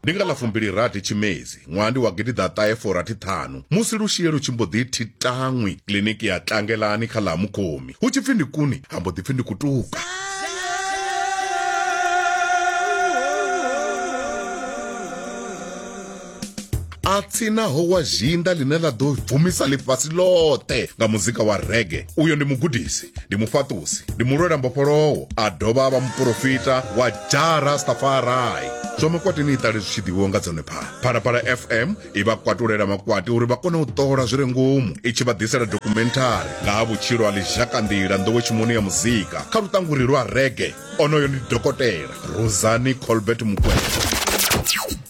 ndi nga ḽa fumbilirathi tshimedzi ṅwaha ndi wa gidiḓaṱahe forathi ṱhanu musi lushie lu tshi mbo ḓi thi taṅwi kiliniki ya tlangelani kha ḽa ha mukhomi hu tshi pfi ndi kuni ha mbo ḓi pfi ndi kutuka a tsinaho wa zhinda ḽine ḽa ḓo bvumisa ḽifhasi ḽoṱhe nga muzika wa rege uyo ndi mugudisi ndi mufhaṱusi ndi mulwela mbofholowo a dovha a vha muporofita wa jara stafarai zwa makwati ni iṱale zwi tshi ḓivhiwa nga dzone phala phalaphala fm i vha kwatulela makwati uri vha kone u ṱola zwi re ngomu i tshi vha ḓisela dokhumenthari nga ha vhutshilo ha ḽizhakanḓila nḓowetshimoni ya muzika kha luṱanguri lwa rege onoyo ndi dokotela rosani colbert mukwena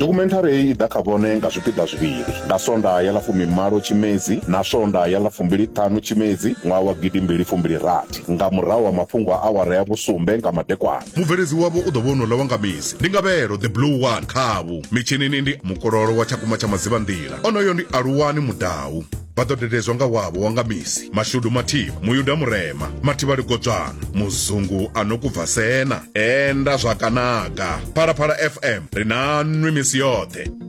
Dokhumenthari heyi i ḓa kha vhone nga zwipiḓa zwivhili, nga Sondaha ya ḽa fumimalo Tshimedzi na Sondaha ya ḽa fumbili-ṱhanu Tshimedzi ṅwaha wa gidi mbili fumbili rathi nga murahu ha mafhungo a awara ya vhusumbe nga madekwana. Mubveledzi wavho u ḓo vha wonouḽa wa nga misi, ndi Ngavhelo the Blue One. Khavhu mitshinini ndi Mukololo wa Tshakumba tsha Madzivhanḓila, onoyo ndi Aluwani Mudau. vha ḓo dededzwa nga wavho wa nga misi mashudu mathivha muyuda murema mathivha ligodzwana muzungu a no kubva sena enda zwakanaga phalaphala fm ri na nwi misi yoṱhe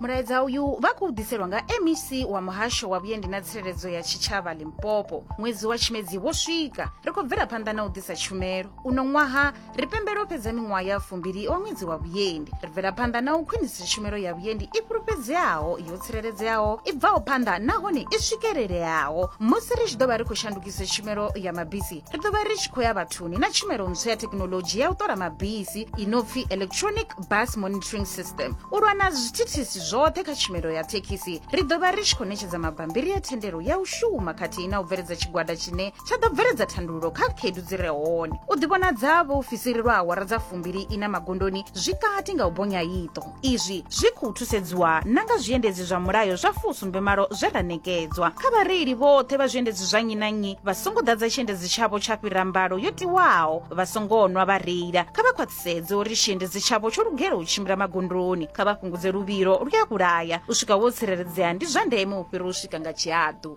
mulaedza uyu vha khou ḓiselwa nga mec wa muhasho wa vhuendi na tsireledzo ya tshitshavha limpopo ṅwedzi wa tshimedzi wo swika ri khou bvela phanḓa na u ḓisa tshumelo uno ṅwaha ri pembela u fhedza miṅwaha ya fumbili wa ṅwedzi wa vhuendi ri bvela phanḓa na u khwinisa tshumelo ya vhuendi i fhulufhedzeaho yo tsireledzeaho i bvaho phanḓa nahone i swikeleleaho musi ri tshi ḓo vha ri khou shandukisa tshumelo ya mabisi ri ḓo vha ri tshi khou ya vhathuni na tshumelo ntswa ya thekinolodzhi ya u ṱola mabisi i no pfi electronic bus monitoring system u lwa na zwithithisi zwoṱhe kha tshumelo ya thekhisi ri ḓo vha ri tshi khou ṋetshedza mabambiri ya thendelo ya u shuma khathihi na u bveledza tshigwada tshine tsha ḓo bveledza thandululo kha khaedu dzi re hone u ḓivhonadza vhaofisiri lwa awara dza fumbili ina magondoni zwi kati nga u bonya iṱo Izwi zwi khou thusedziwa na nga zwiendedzi zwa mulayo zwa fusumbe malo zwe ra ṋekedzwa. Kha vhareili vhoṱhe vha zwiendedzi zwa nnyi na nnyi vha songo ḓadza tshiendedzi tshavho tsha fhira mbalo yo tiwaho, vha songo nwa vha reila. Kha vha khwaṱhisedze uri tshiendedzi tshavho tsho lugela u tshimbila magondoni. Kha vha fhungudze luvhilo lu a vhulaya. U swika wo tsireledzea ndi zwa ndeme u fhira u swika nga tshihaḓu.